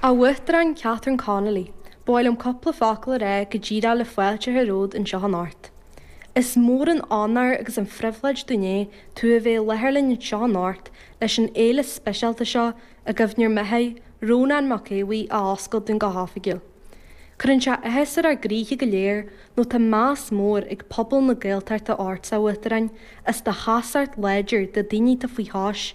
A Uachtaráin Catherine Connolly, ba mhaith liom cúpla focal a rá go díreach le fáilte a chur romhat anseo anocht. Is mór an onóir agus an phribhléid dúinn é tú a bheith i láthair linn anseo anocht leis an fhéile speisialta seo i gcuimhne ar mo dheartháir, Rónán Mac Aodh Bhuí a oscailt dúinn go hoifigiúil. Cuireann sé áthas ar ár gcroíthe go léir nó tá meas mór ag pobal na Gaeltachta ort, a Uachtaráin, as do sheasamh láidir do dhaoine atá faoi chois,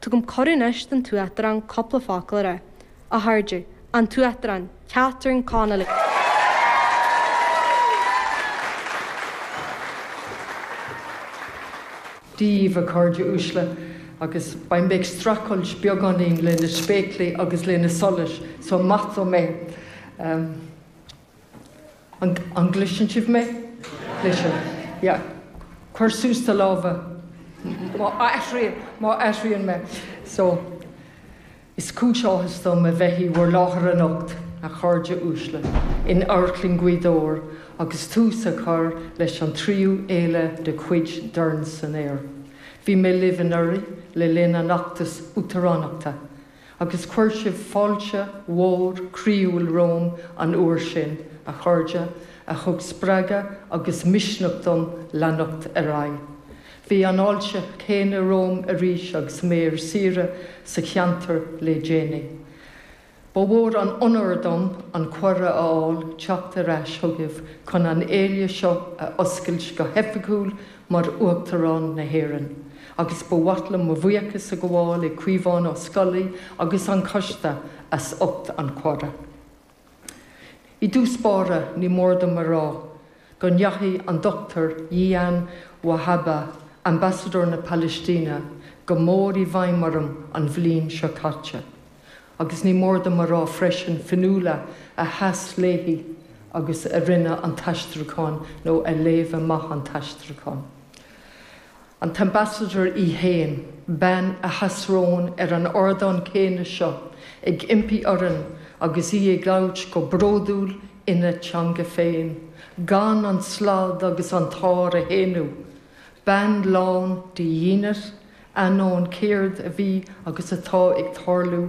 Tugaim cuireadh anois don tUachtarán cúpla focal a rá. A Chairde, An tUachtarán, Catherine Connolly. Dia daoibh, a chairde uaisle, agus beidh mé ag streachailt beagáinín leis na spéaclaí agus leis na solais, so maith dom é. An, an gcloiseann sibh mé? Cloiseann. Yeah. Cuir suas do lámha má athraíonn, má athraíonn mé. So, is cúis áthais dom a bheith i bhur láthair anocht, a chairde uaisle, in amharclann Ghaoth Dobhair agus tús á chur leis an tríú fhéile de chuid Dorn san Aer. Bhí mé libh anuraidh le linn an fheachtas uachtaránachta Agus chuir sibh fáilte mhór croíúil romham an uair sin, a chairde, a thug spreagadh agus misneach dom leanacht ar aghaidh. Bhí an fháilte chéanna romham arís agus mé ar saoire sa cheantar le déanaí. Ba mhór an onóir dom an cuireadh a fháil teacht ar ais chugaibh chun an fhéile seo a oscailt go hoifigiúil mar Uachtarán na hÉireann agus ba mhaith liom mo bhuíochas a ghabháil le Caomhán Ó Scolaí agus an Coiste as ucht an chuiridh. I dtús báire ní mór dom a rá go ndeachaigh an Dr Jilan Wahba, Ambasadóir na Palaistíne, go mór i bhfeidhm orm an bhliain seo caite. Agus ní mór dom a rá freisin Fionnuala a sheas léi agus a rinne an t-aistriúchán nó a léamh amach an t-aistriúchán. An tAmbasadóir í fhéin, bean a sheas romhainn ar an ardán céanna seo ag impí orainn agus í ag labhairt go bródúil ina teanga féin gan an slad agus an t-ár a shéanadh. Bean lán de dhínit, ainneoin céard a bhí agus atá ag tarlú